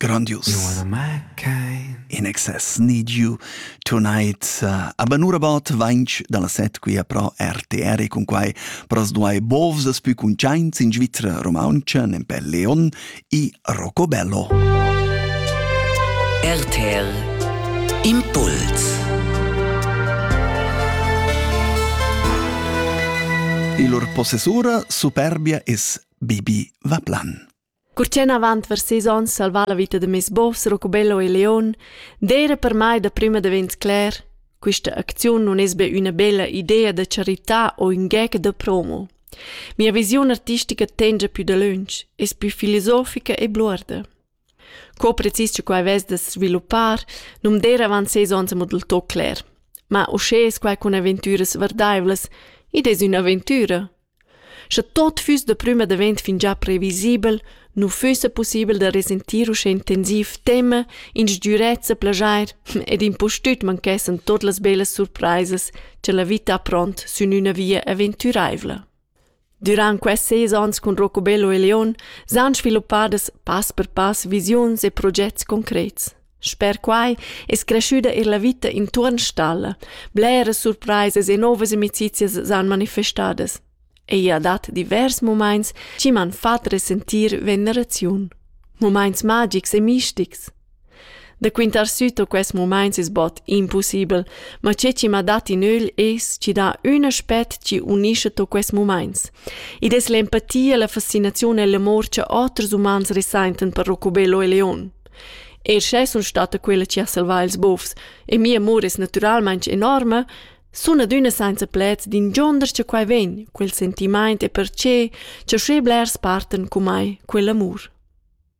Grandius. In excess need you tonight. Uh, aber nur about vainch dalla set quia pro RTR e cun quai pras duai bovs as pü cuntschaints in Svizra romauntscha, nempe Leon, i Rocobello. RTL Impuls Il lur possessura superbia es Bibi Vaplan. Curtien avant vers sis ons salvà la vita de mes bovs Rocobello e Leon, d'era per mai da prima divent cler, questa acziun non es be una bella idea da carità o un gec de promo. Mia visiun artistica tengia più dalöntsch, es più filosofica e bluorda. Co precis che quai vess da sviluppar, nu'm der avant ses ons amo del tot cler. Ma uschè es quai cun aventüras vardaivlas, id es ün'aventüra. Sche tot füss da prüma davent fingià previsibel, nu füssa pussibel da resentir uschè intensiv tema, in sgürezza plaschair ed impustüt manchessan tuot las bellas surpraisas cha la vita ha pront sün üna via aventüraivla. Durant quests seis ans cun Rocobello e Leon s'han sviluppadas pass per pass visiuns e progets concrets. Sper quai es creschüda eir la vita intuorn stalla. Bleras surpraisas e novas amicizias s'han manifestadas. Ella dat divers mumaints chi m'han fat resentir veneraziun. Mumaints magics e mistics. Da quintar süt a quests mumaints es bod impussibel, ma che chi m'ha dat in ögl es chi dà ün aspet chi unischa to quests mumaints. Id es l'empatia, la fascinaziun e l'amor cha oters umans resaintan per Rocobello e Leon. Eir sche sun stada quella chi ha salvà ils bofs e mia amur es natüralmaing enorma, sun adüna sainza pleds d'ingionder cha quai vegn, quel sentimaint e perche cha sche blers partan cu mai quell'amur.